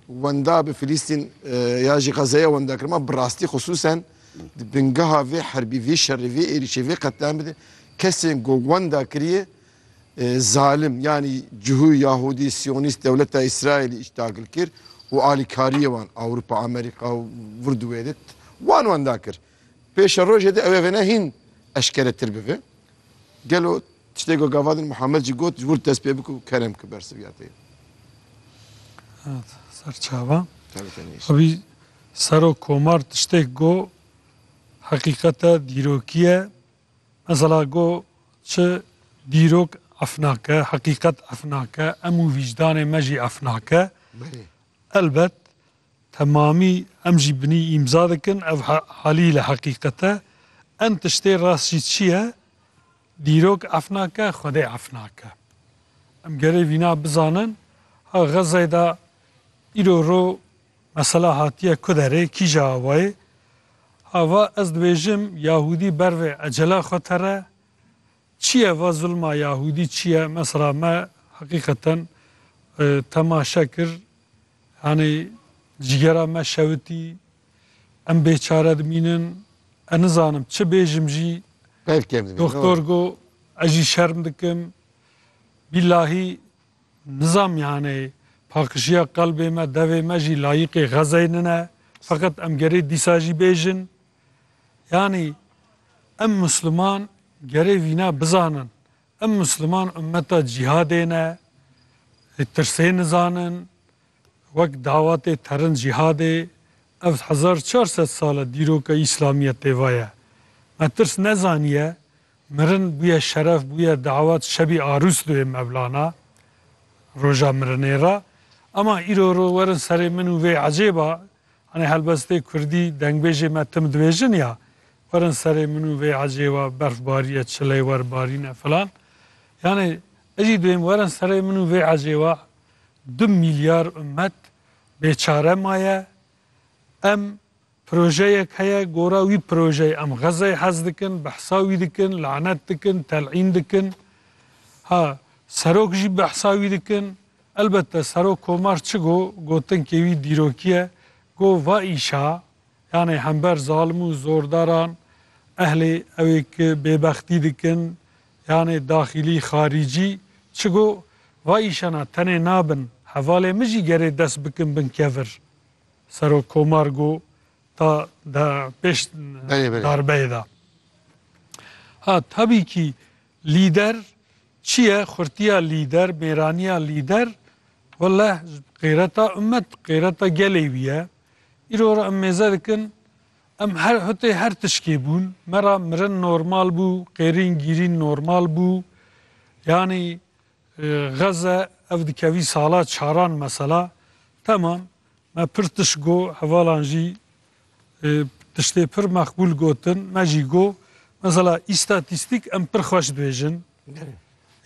Wenda bi Filîstîn ya jî Xezeya wenda kir. Ma bi rastî xisûsen di bingeha vê herbî, vê şerê, vê êrîşê, vê qetliamê de kesên ku wenda kiriye zalim yanî cihû Yahûdî, Siyonîst, dewleta Îsraîlî îşdagil kir û alîkariyê wan Ewropa, Amerîka û vir di wê de wan wenda kir. Pêşerojê de ew ê vêne hîn eşkeretir bibe. Gelo Tiştê ku gavadin Muhammed jî got, ji wir dest pê bike û kerem ki bersiv ya te ye. Serçava. Tevî tenê îşe. Abî Serok Komar tiştêk go heqîqet e, dîrokî ye. Mesela go çi dîrok ef nake, heqîqet ef nake, em û vîcdanê me jî ef nake. Belê. Elbet temamî em jî binî îmza dikin ev he- halî li heqîqet e. Em tiştê rast jî çi ye? Dîrok ef nake, Xwedê ef nake. Em gerê vîna bizanin, ha Xezzeyê de îro ro mesela hatiye ku derê, kîja awayê? Ha va ez dibêjim Yahûdî ber vê ecela xwe tere. Çi ye va zulma Yahûdî çi ye? Mesela me heqîqeten temaşe kir, yanî cîgera me şewitî, Em bêçare dimînin. Ez nizanim çi bêjim jî. Peyv kêm dimînin. Doktor got, ez jî şerm dikim. Bîlahî nizam yanê paqişiya qelbê me, devê me jî layîqê xezeyê nine. Feqet em gerê dîsa jî bêjin. Yanî em Musliman gerê vîna bizanin. Em Musliman ummeta cîhadê ne. Tirsê nizanin. Wek dawatê terin cîhadê, ev hezar çar sed sal e dîroka îslamiyê têva ye. Me tirs nezaniye, mirin bûye şeref, bûye dawat, şebî arûs duyê mevlana, roja mirinê re. Ema îro ro werin serê min û vê ecêba, hanê helbestê kurdî dengbêjê me tim dibêjin ya, werin serê min û vê ecêba, berf bariye, çileywer barîne filan. Yanê ejî duyêm werin serê min û vê ecêba, Du milyar umet bêçare maye. Em projeyek heye, gora wî projeyê em Xezeyê hez dikin, behsa wî dikin, lanet dikin, tel'în dikin. Ha serok jî behsa wî dikin. Elbette Serok Komar çi got, gotinkê wî dîrokî ye. Got va îşa yanê hember zalim û zordaran ehlê ew ê ki bêbextî dikin, Yanê daxîlî xarîcî çi got, Va îşana tenê nabin, hevalê min jî gerê dest bikin bin kevir. Serokkomar got, Ta de pêş darbeyê de. Ha tabîkî lîder çi ye, xurtiya lîder, mêraniya lîder welleh qêreta ummet, qêreta gelê wî ye. Îro re em mêze dikin. Em her hutê her tişkê bûn. Me ra mirin normal bû, qêrîn gîrîn normal bû. Yanî xeze ev dikevî sala çaran mesela. Temam me pir tişt go hevalan jî tiştê pir mexbûl gotin. Me jî go mesela îstatîstîk em pir xweş dibêjin.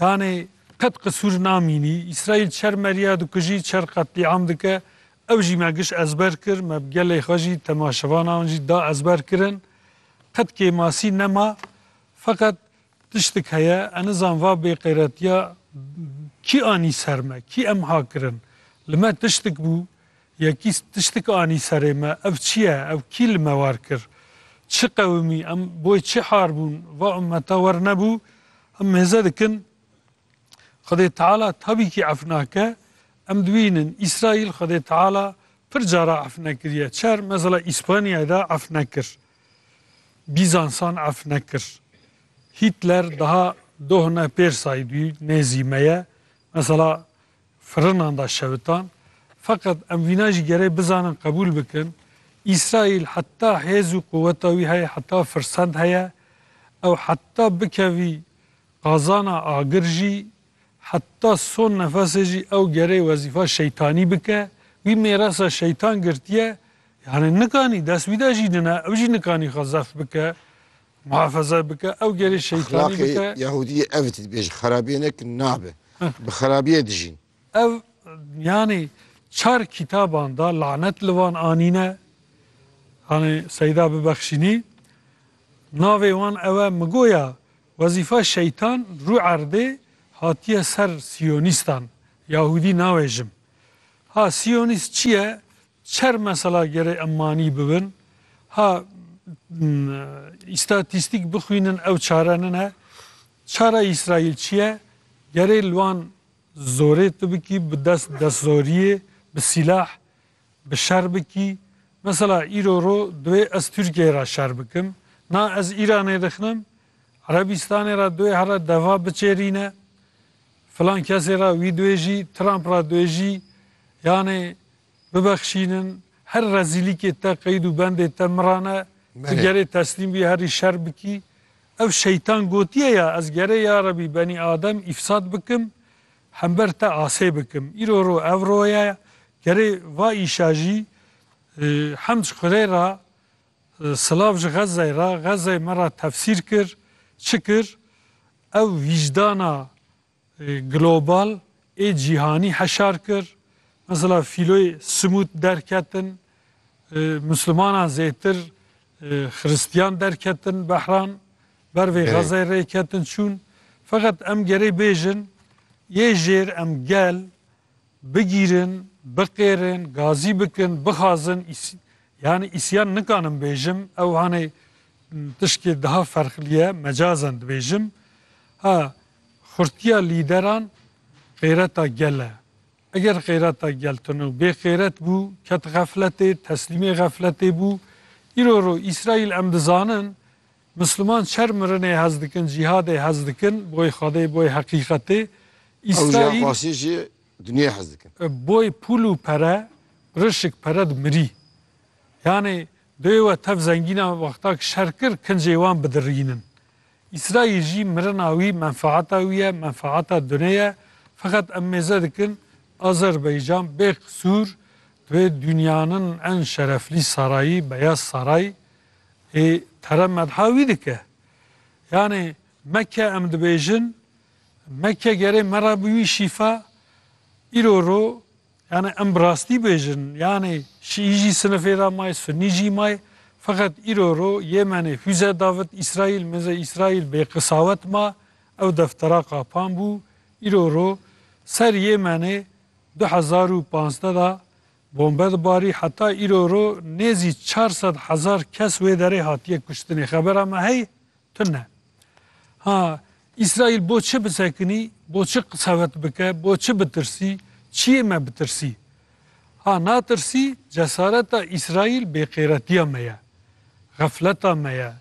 Yanî qet qisûr namînî. Îsraîl çer meriya dikujî, çer qetlîam dike. Ew jî me giş ezber kir, me bi gelê xwe jî, temaşevana wan jî da ezber kirin. Qet kêmasî nema. Feqet tiştik heye, ez nizan va bêqeyretiya kî anî ser me, kî em ha kirin. Li me tiştik bû, yekî tiştik anî serê me, ev çi ye, ew kî li me war kir? Çi qewimî, em boy çi har bûn, va ummeta wer nebû. Em mêze dikin. Xwedê Teala tabîkî ef nake. Em dibînin Îsraîl Xwedê Teala pir cara ef nekiriye. Çer mesela Îspanyayê de ef nekir. Bîzansan ef nekir. Hîtler daha dohne pêr saydûyî nê zî me ye. Mesela firinan da şewitan. Feqet em vîna jî gerê bizanin qebûl bikin. Îsraîl heta hêz û quweta wî heye, heta firsend heye. Ew heta bikevî Qazana agir jî heta son nefesê jî ew gerê wezîfa şeytanî bike, wî mêrasa şeytan girtiye, yanê nikanî dest wî de jî nine, ew jî nikanî xwe zeft bike, muhafeze bike, ew gerê şeytanî Exlaqê bike. yahûdiyê ev tê, dibêje xerabiyê nekin nabe, bi xerabiyê dijîn. Ev yanê çar kîtaban de lanet li wan anîne, yanê Seyda bibexşînî, navê wan ew e, mi goya Wezîfa şeytan rû erdê hatiye ser siyonîstan, yahûdî nawe jim. Ha siyonîst çi ye, çer mesela gerê em manî bibin. Ha îstatîstîk bixwînin ew çare nine. Çara Îsraîl çi ye? Gerê li wan zorê tu bikî bi dest destsorîyê, bi sîlah. Bi şer bikî. Mesela îro ro duê ez Tirkiyeyê ra şer bikim. Na ez Îranê dixinim, Erebîstanê ra duê here deva biçêrîne, filan kesê ra wî duê jî, Trump ra duê jî, yanê bibexşînin, her rezîlîkê te, qeyd û bendê te min ra ne, tu gerê teslîm bî herî şer bikî. Ev şeytan gotiye ya ez gerê yarebî benî adem îfsad bikim, Hember te asê bikim. Îro ro ev ro ye gerê va îşa jî hem ji xwedê ra silav ji Xezzeyê ra, Xezzeyê me ra tefsîr kir, çi kir ew vîcdana global ê cîhanî heşar kir. Mesela fîloyê simût derketin, Muslimanan zêtir Xiristiyan derketin behran, ber vê Xezeyê rê ketin çûn. Feqet em gerê bêjin yê jêr em gel bigîrin, biqêrin, gazî bikin, bixazin yanî îsyan nikanim bêjim ew hanê tişkê daha ferqlî ye mecazen dibêjim. Ha xurtiya lîderan xêreta gel e. Eger xêreta Geltino bê xêret bû, ket xefletê, teslîmê xefletê bû. Îro ro Îsraîl em dizanin, Misliman çer mirinê hez dikin, cîhadê hez dikin, boy Xwedê, boy heqîqetê. Ew jî her Îsraîl xwasî jî dinyayê hez dikin. boy pûl û pere, rişik pere di mirî. Yanê Bê we tev zengînan wexta ku şer kir kincê wan bidirînin. Îsraîl jî mirina wî menfaeta wî ye, menfaeta dunê ye. Feqet em mêze dikin Azerbeycan bê qisûr di vê dûnyanin en şereflî sarayî Beyaz Saray ê tere medha wî dike. Yanê Mekke em dibêjin Mekke gerê me re bi wî şîfa îro ro Yanê em bi rastî bêjin yanê şîî jî sinifê de mayê, sunî jî mayê. Feqet îro ro Yêmenê fûze davit Îsraîl, mizê Îsraîl bêqisawet ma, ew deftera qapan bû. Îro ro ser Yêmenê du hezar û panzdeh de bombe dibarî. Heta îro ro nêzî çar sed hezar kes wê derê hatiye kuştinê. Xebera me heye? Tune. Ha, Îsraîl bo çi bisekinî, bo çi qisewet bike, bo çi bitirsî, çiyê me bitirsî? Ha, natirsî, cesareta Îsraîl bêqêretiya me ye, xefleta me ye.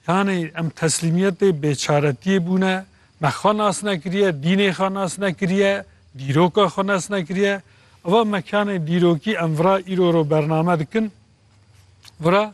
Yanî em teslîmiyetê bêçaretiyê bûne, me xwe nas nekiriye, dînê xwe nas nekiriye, dîroka xwe nas nekiriye. Eva mekanê dîrokî em vira îro ro bername dikin, vira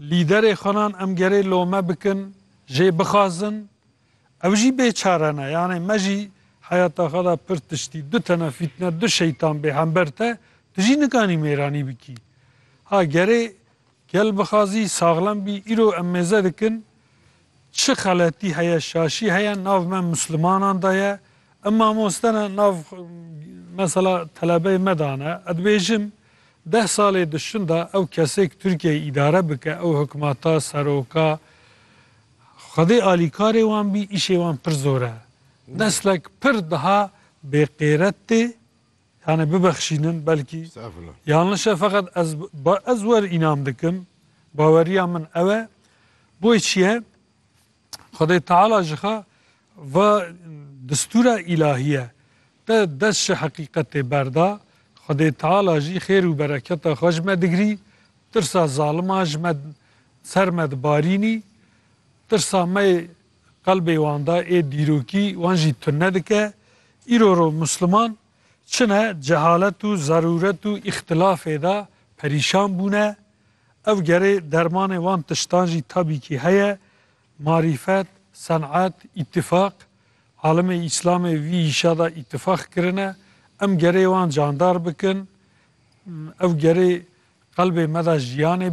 Lîderê xwenan em gerê lome bikin, jê bixazin. Ew jî bêçare ne. Yanê me jî heyata xwe de pir tiştî, du tene fîtne, du şeytan bê hember te, tu jî nikanî mêranî bikî. Ha gerê gel bixazî, saxlem bî, îro em mêze dikin, Çi xeletî heye şaşî heye nav me muslimanan de ye em mamoste ne nav mesela telebeyê me de ne ez dibêjim deh salê dişin de ew kesêk Tirkiyeyê îdare bike ew hikmata seroka xwedê alîkarê wan bî îşê wan pir zor e neslek pir daha bêqêret tê Yanê bibexşînin belkî. Estağfurullah. Yanlış e feqet ez ez wer înan dikim. Baweriya min ew e. Boy çiye? Xwedê Teala ji xwe va distûra îlahiye te dest ji heqîqetê berda, Xwedê Teala jî xêr û bereketa xwe ji me digirî, tirsa zaliman ji me ser me dibarînî, tirsa me Qelbê wan de ê dîrokî wan jî tune dike. Îro ro Musliman çine cehalet û zerûret û îxtilafê de perîşan bûne. Ev gerê dermanê wan tiştan jî tabîkî heye, marîfet, senet, îtîfaq. Alimê Îslamê vî îşa de îtîfaq kirine. Em gerê wan candar bikin. Ew gerê qelbê me de jiyanê.